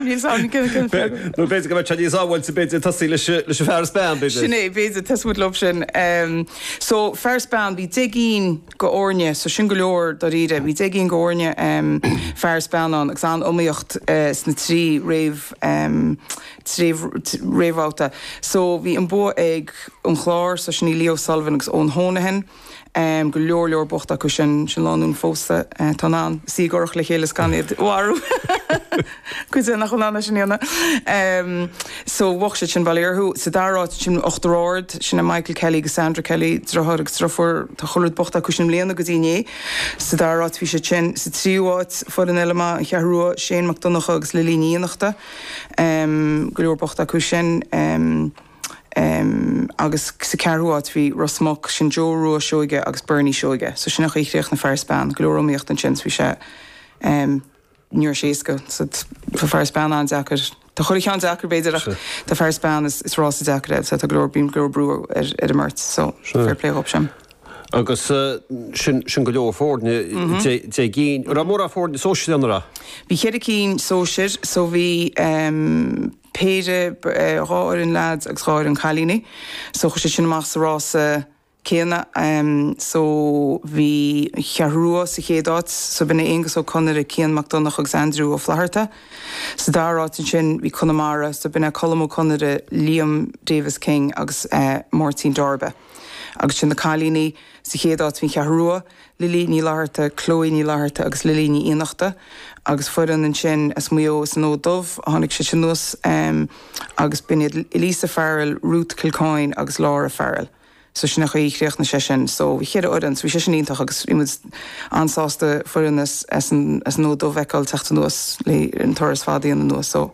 nó b'fhéidir go mbeidh sé níos sábháilte b'fhéidir tosaí leis an fear is bean b'fhéidir. Sin é, b'fhéidir, tosóidh muid leis sin. So fear is bean, bhí deich gcinn de fhoirne, so sin go leor dáiríre, bhí deich gcinn de fhoirne fear is bean ann agus an-iomaíocht sna trí réamhbhabhta. So bhí an bua ag an Chlár, so sin í Leah O'Sullivan agus Eoin Honohan. Go leor leor buaite acu sin, sin lánúin phósta. Tá siad in ann suí i gcurach le chéile is gan iad a mharú. Cuide nach bhfuil in ann é sin a dhéanamh. So bhuaigh siad sin, bail ó Dhia orthu. Sa dara áit ansin Uachtar Ard, sin é Michael Kelly agus Sandra Kelly, deartháir agus deirfiúr, tá chuile rud buaite acu sin i mbliana go dtí inné. Sa dara áit bhí siad sin. Sa tríú áit, foireann eile maith, An Cheathrú Rua, Shane Mac Donncha agus Lily Ní Fhiannachta. Go leor buaite acu sin. agus sa ceathrú áit bhí Ros Muc, sin Joe Rua Seoige agus Bernie Seoige, so sin an chaoi a chríochnaigh Fear is Bean, go leor iomaíocht ansin, so bhí sé, ní raibh sé éasca, so tá Fear is Bean an-deacair, tá chuile cheann deacair b'fhéidir ach tá Fear is Bean is rása deacair é, so tá go leor, bíonn go leor brú ar ar an mbeirt, so fair play dhóibh sin. Agus sin go leor foirne, deich, deich gcinn, an raibh mórán foirne sóisir ann a raibh? Bhí ceithre cinn sóisir, so bhí péire, dhá fhoireann leaids agus dhá fhoireann cailíní so chuir siad sin amach sa rása céanna so bhí an Cheathrú Rua sa chéad áit so b'in é Aonghus Ó Conaire, Cian Mac Donnchadh agus Aindriú Ó Flatharta. Sa dara áit ansin bhí Conamara so b'in é Colm Ó Conaire, Liam Davis King agus Máirtín Dorbe. Agus ansin na cailíní, sa chéad áit bhí an Cheathrú Rua, Lily Ní Fhlatharta, Chloe Ní Fhlatharta agus Lily Ní Fhiannachta agus foireann ansin as Maigh Eo, as an bhFód Dubh a tháinig siad anuas agus b'in iad Elisa Farrell, Ruth Kilcoyne agus Laura Farrell. So sin an chaoi a chríochnaigh sé sin. So bhí cheithre fhoireann, so bhí sé sin iontach agus bhí muid an-sásta foireann as an bhFód Dubh a fheiceáil ag teacht anuas leis an turas fada a dhéanamh anuas. So.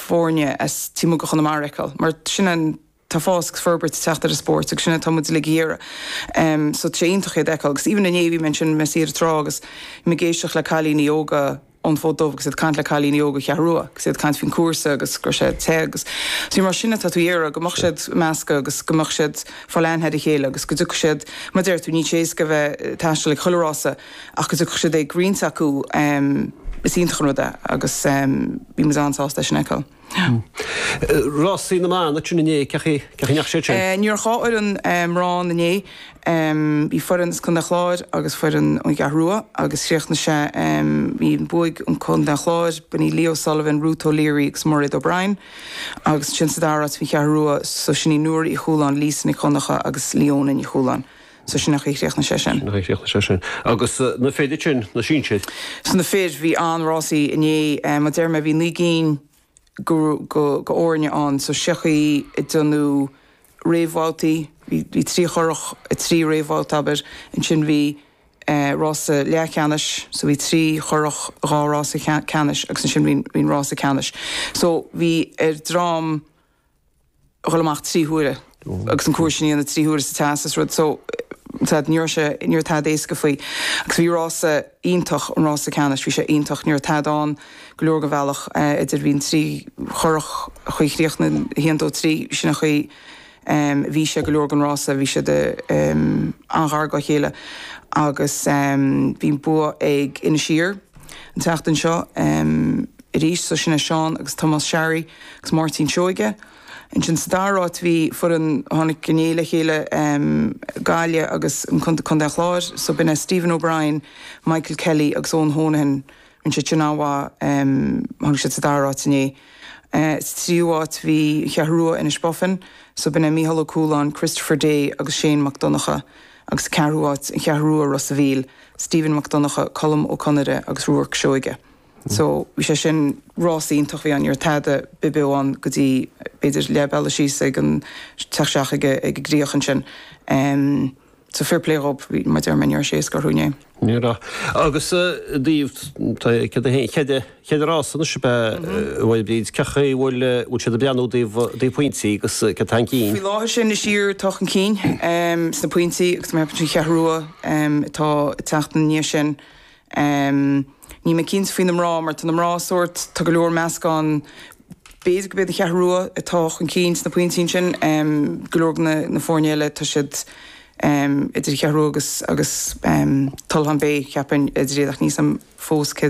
foirne as taobh amuigh de Chonamara a fheiceáil mar sin tá fás agus forbairt ag teacht ar an spórt agus sin atá muid uilig ag iarraidh so tá sé iontach iad a fheiceáil agus even inné bhí mé ansin i mo shuí ar an trá agus bhí mé ag éisteacht le cailíní óga ón bhFód Dubh agus iad ag caint le cailíní ón gCeathrú Rua agus iad ag caint faoin cúrsa agus go raibh sé te agus so bhí mar sin atá tú iarraidh go mbeadh siad ag meascadh agus go mbeadh siad ag fáil aithne ar a chéile agus go dtiocfadh siad mar deir tú níl sé éasca a bheith taisteal ag chuile rása ach go dtiocfadh siad ag roinnt acu is iontach an rud é agus Bhí muid an-sásta é sin a fheiceáil. Rásaí na mBan ansin inné, cén chaoi ar chríochnaigh siad sin? Ní raibh ach dhá fhoireann mná inné. Bhí foireann as Contae an Chláir agus foireann ón gCeathrú Rua agus chríochnaigh sé, bhí, bhuaigh Contae an Chláir, b'in í Leah O'Sullivan, Ruth O'Leary agus Mairéad O'Brien agus ansin sa dara áit bhí an Cheathrú Rua, so sin í Nóra Uí Chualáin, Lisa Nic Dhonnacha agus Leona Ní Chualáin. so sin nach í a chríochnaigh sé sin. nach í a chríochnaigh sé sin. Agus na fir ansin, na sinsir? So na fir, bhí an-rásaí inné, mar a deir mé, bhí naoi gcinn go, go, go fhoirne ann, so sé an chaoi ag déanú réamhbhabhtaí, bhí, bhí trí churach i dtrí réamhbhabhta, abair, ansin bhí rása leathcheannais, so bhí trí churach i dhá rása ceannais agus ansin bhí, bhí an rása ceannais. So bhí ar dhream dhul amach trí huaire agus an cúrsa sin a dhéanamh trí huaire sa teas is rud so ní raibh sé ní raibh tada éasca faoi agus bhí rása iontach an rása ceannais bhí sé iontach ní raibh tada ann go leor go bhealach eh, idir bhí an trí churach a chríochnaigh na haon dó trí sin an chaoi em, bhí sé go leor gon rása bhí siad em, an-ghar go chéile agus em, bhí an bua ag Inis Oírr an tseachtain seo em, arís so sin é, Seán agus Tomás Sharry agus Máirtín Seoige. Ansin sa dara áit bhí foireann a tháinig go le chéile Gaillimh agus Contae an Chláir so b'in é Stephen O'Brien, Michael Kelly agus Eoin Honohan. Rinne siad sin an-mhaith. Tháinig siad sa dara áit inné. Sa tríú áit bhí An Cheathrú Rua, Inishbofin so b'in é Micheál Ó Cualáin, Christopher Day agus Shane Mac Donnacha agus sa ceathrú áit An Cheathrú Rua, Ros a Mhíl, Stephen Mac Donnacha, Colm Ó Conaire agus Ruarc Seoige. So, bhí sé sin rás iontach a bhí ann, ní raibh tada between ann go dtí b'fhéidir leath bealaigh síos ag an, teacht isteach ag an gcríoch ansin. So fair play dhób, mar a deir mé, ní raibh sé éasca orthu inné. Ní raibh. Agus i dtaobh, tá an céad, cé mhéad rás anois ab ea, a Mháire Bríd, cén chaoi a bhfuil, bhfuil siad ag breathnú i dtaobh, i dtaobh pointí agus cé atá chun cinn? Faoi láthair sin Inis Oírr atá chun cinn sna pointí agus an Cheathrú Rua atá ag teacht ina ndiaidh sin. em níl mé cinnte faoi na mná mar tá na mná sórt tá go leor meascán b'fhéidir go mbeidh an Cheathrú Rua atá chun cinn sna pointí ansin em go leor de na na foirne eile tá siad em idir Cheathrú Rua agus agus em Tullach an bheidh cheapfainn idir iad ach níl a fhios agam fós cé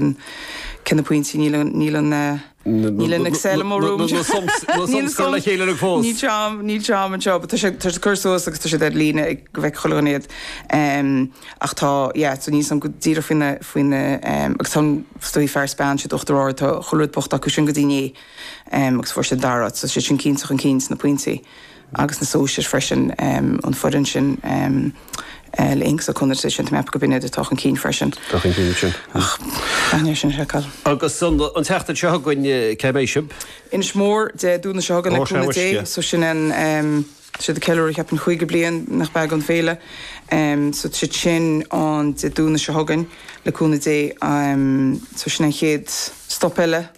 cé na pointí níl an níl an eh Níl an Excel i mo romham. Níl na sums curtha le chéile agam fós. Níl tráim, níl tráim anseo, but tá sé, tá sé curtha suas agus tá siad ar líne ag, go bhfeicfidh chuile dhuine iad. Ach tá, yeah, so níl a fhios agam go díreach faoi na, faoi na, agus tá an stuif fear is bean, siad Uachtar Ard, tá chuile rud buaite acu sin go dtí inné. Agus fuair siad an dara áit, so siad sin cinnte chun cinn sna pointí. agus na Sóisir freisin, an foireann sin le Inks O'Connor déarfainn sin tá mé ag ceapadh go b'in iad atá chun cinn freisin. Tá chun cinn sin. Ach an é sin seiceáil. Agus an an tseachtain seo chugainn cé mbeidh sibh? Inis Mór Dé Domhnaigh seo chugainn le cúnamh Dé so sin tá siad ag ceiliúradh cheapfainn caoga bliain nach beag an féile so siad sin an Dé Domhnaigh seo chugainn le cúnamh Dé so sin an chéad stop eile.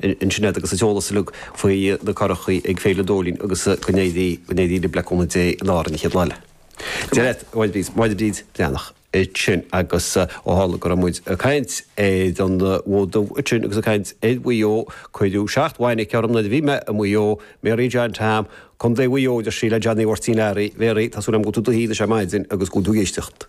in Sinéad agus an t-eolas uilig faoi na curachaí ag Féile an Dóilín agus go n-éirí libh le cúnamh Dé in Árainn Mhic Ghiolla Deir Mháire Bríd, Máire Bríd Breathnach, ansin agus ó tharla go raibh muid ag caint ar an bhFód Dubh ansin agus ag caint ar Mhaigh Eo, cuireadh seacht bhfainic orm nuair a bhí mé i Maigh Eo, Mary John Tom, Co Mhaigh Eo, deirfiúr le Johnny Mháirtín Learaí, Mary, tá súil agam go bhfuil tú i do shuí anois ar maidin agus go bhfuil tú ag éisteacht.